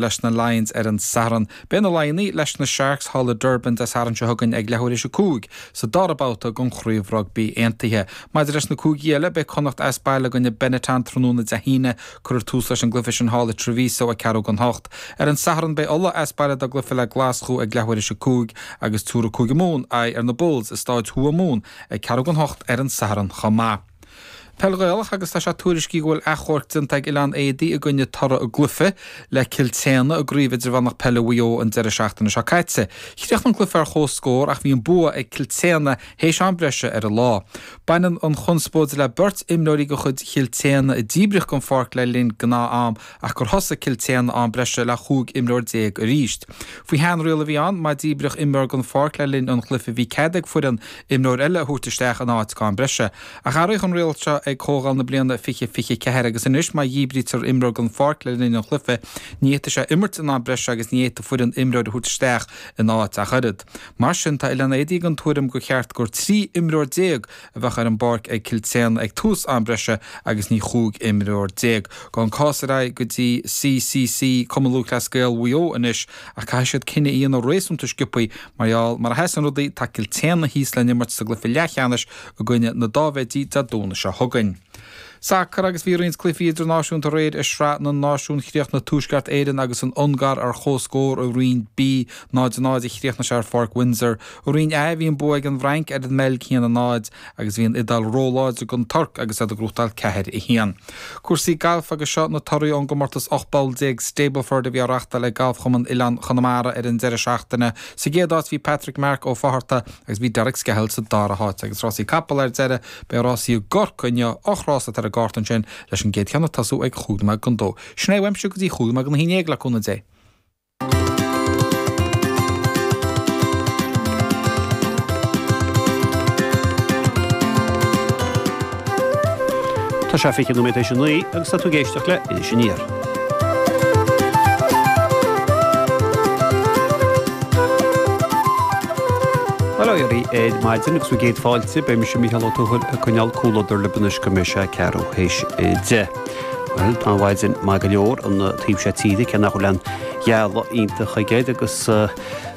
leis na Lions ar an Satharn. Beidh na Laighnigh leis na Sharks thall i Durban Dé Sathairn seo chugainn ag leathuair théis a cúig sa dara babhta den Chraobh Rugbaí Aontaithe. Maidir leis na cúigí eile, beidh Connacht as baile i gcoinne Benetton tráthnóna Dé hAoine. Cuirfear tús leis an gcluiche sin thall i Treviso ag ceathrú don hocht. Ar an Satharn, beidh Ulaidh as baile dá gcluiche le Glaschú ag leathuair théis a cúig agus tabharfaidh Cúige Mumhan aghaidh ar na Bulls i Staid Thuamhumhan ag ceathrú don hocht ar an Satharn chomh maith. Peil Ghaelach agus tá sé tuairiscithe go bhfuil achomharc déanta ag Oileán Éadaí i gcoinne toradh a gcluiche le Cill tSéadhna i gCraobh Idirmheánach Peile Mhaigh Eo an deireadh seachtaine seo caite. Chríochnaigh an cluiche ar chomhscór ach bhí an bua ag Cill tSéadhna théis am breise ar an lá. Baineann an chonspóid le beirt imreoirí de chuid Chill tSéadhna a díbríodh den pháirc le linn gnáth-am ach gur thosaigh Cill tSéadhna am breise le chúig imreoir déag arís. Faoi shean-riail a bhí ann, má díbríodh imreoir den pháirc le linn an chluiche bhí cead ag foireann imreoir eile a thabhairt isteach ina áit don am breise, ach athraíodh an riail seo ag Comhdháil na bliana 2024 agus anois má dhíbrítear imreoir den pháirc le linn an chluiche ní fhéadfaidh sé imirt in am breise agus ní fhéadfaidh foireann imreoir a thabhairt isteach ina áit ach oiread. Mar sin, tá Oileán Éadaí den tuairim gur cheart gur trí imreoir déag a bheadh ar an bpáirc ag Cill tSéadhna ag tús am breise agus ní chúig imreoir déag Gabhfaidh an cás ar aghaidh go dtí CCC, Cumann Lúthchleas Gael Mhaigh Eo, anois ach caithfidh siad cinneadh a dhéanamh réasúnta sciobthaí mar gheall mar a sheasann rudaí tá Cill tSéadhna thíos le n-imirt sa gcluiche leathcheannais i gcoinne na Dáibhéidí Dé Domhnaigh seo chugainn. Sacar agus bhí roinnt cluichí idirnáisiúnta aréir i Sraith na Náisiún Chríochnaigh Tuaisceart Éireann agus an Ungáir ar chomhscór i Roinn B. 0 0 a chríochnaigh sé ar Pháirc Windsor. I Roinn A bhí an bua ag an bhFrainc ar an mBeilg 1 0 agus bhí an Iodáil róláidir don Tuirc agus iad ag gnóthachtáil 4 1. Cúrsaí Gailf agus seo na torthaí ón gcomórtas 18 bpoll Stableford a bhí á reachtáil ag Galfchumann Oileáin Chonamara ar an deireadh seachtaine. Sa gcéad áit bhí Patrick Mark Ó Fátharta agus bhí Derek Skehill sa dara háit agus rásaí capall ar deireadh. Beidh rásaí i gCorcaigh inniu, ocht rás atá ar an gcárta ansin, leis an gcéad cheann ag tosú ag chúig nóiméad don dó. Sin é uaimse go dtí chúig nóiméad don haon déag le cúnamh Dé. Tá sé fiche nóiméad tar éis a naoi agus tá tú ag éisteacht le Iris Aniar. Bail ó Dhia oraibh ar maidin agus bhur gcéad fáilte, beidh mise, Mícheál Ó Tuathail, ag coinneáil comhluadar libh anois go mbeidh sé ceathrú théis a deich. Bhuel, tá an mhaidin maith go leor, an taobh seo tíre, cé nach bhfuil aon ghealladh iontach aige agus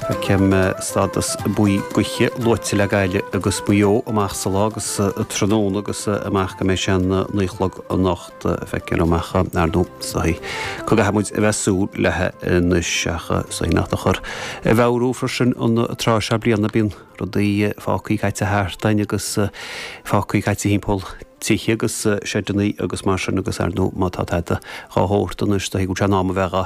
feicim stádas buí gaoithe luaite le Gaillimh agus Maigh Eo amach sa lá agus tráthnóna agus amach go mbeidh sé 9 a chlog anocht. do feiceáil liom ach ar ndóigh is dóichí go gcaithfidh muid a bheith ag súil léi anois ach is dóichí nach dochar é a mheabhrú freisin an tráth seo bliana bíonn rudaí fágthaí caite thart againn agus fágthaí caite thimpeall tithe agus seideannaí agus mar sin agus ar ndóigh má tá tada dhá shórt anois do thuigim go bhfuil sé in am a bheith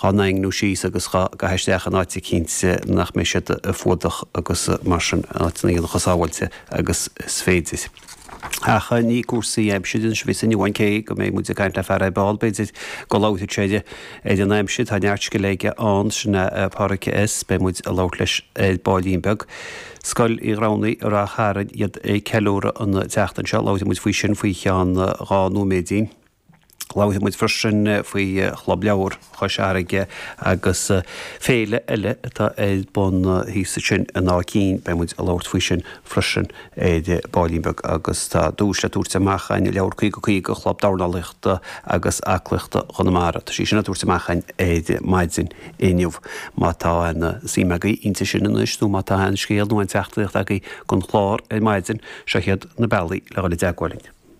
dhá ndaingniú síos agus dhá gcur isteach in áit eicínt nach mbeidh siad fuadach agus mar sin in áiteanna a bheadh chomh sábháilte agus is féidir. Ach ní cúrsaí aimsire anois a bheas ann amháin, cé go mbeidh muid ag caint le fear ar ball, b'fhéidir, go labhróidh sé ar an aimsir. Tá neart scil aige ann, sin é Pádraic, is beidh muid ag labhairt leis ar baillín beag, Scoil Uí Ghramhnaigh, i Ráth Chairn, iad ag ceiliúradh an tseachtain seo. Labhróidh muid faoi sin faoi cheann dhá nóiméidín. Labhairfidh muid freisin faoi Chlub Leabhar Chois Fharraige agus féile eile atá ar bun thíos ansin in Áth Cinn, beidh muid ag labhairt faoi sin freisin ar baillín beag agus tá duais le tabhairt amach againn, leabhar 50 50, Chlub Dornálaíochta agus Aclaíochta Chonamara, tá sí sin á tabhairt amach againn ar maidin inniu. Má tá suim agaibh inti sin anois nó má tá aon scéal nó aon teachtaireacht agaibh don chlár ar maidin, seo iad na bealaí le dhul i dteagmháil linn.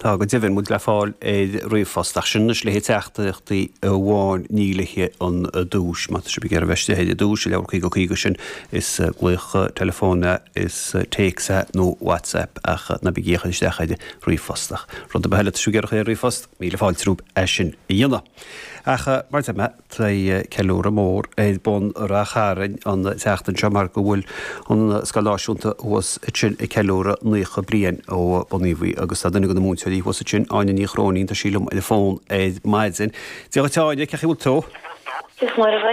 Tá go deimhin muid le fáil ar ríomhphost, ach sin anois le haghaidh teachtaireachtaí amháin, ní le haghaidh an duais, má tá sibh ag iarraidh a bheith istigh ar an duais, an leabhar 50 50 sin, is glaoch teileafóin is téacs é, nó WhatsApp, ach ná bígí ag cur isteach ar ríomhphost. Ach rud ar bith eile, tá sibh ag iarraidh a chur ar ríomhphost, míle fáilte romhaibh é sin a dhéanamh. Ach mar a deir mé. Tá ceiliúradh mór ar bun i Ráth Chairn an tseachtain seo mar go bhfuil an scoil náisiúnta thuas ansin ag ceiliúradh naocha bliain ó bunaíodh í agus tá duine de na múinteoirí thuas ansin, Áine Ní Chróinín, tá sí liom ar an bhfón ar maidin. Dia dhuit, a Áine, cén chaoi bhfuil tú? Is maith liom é.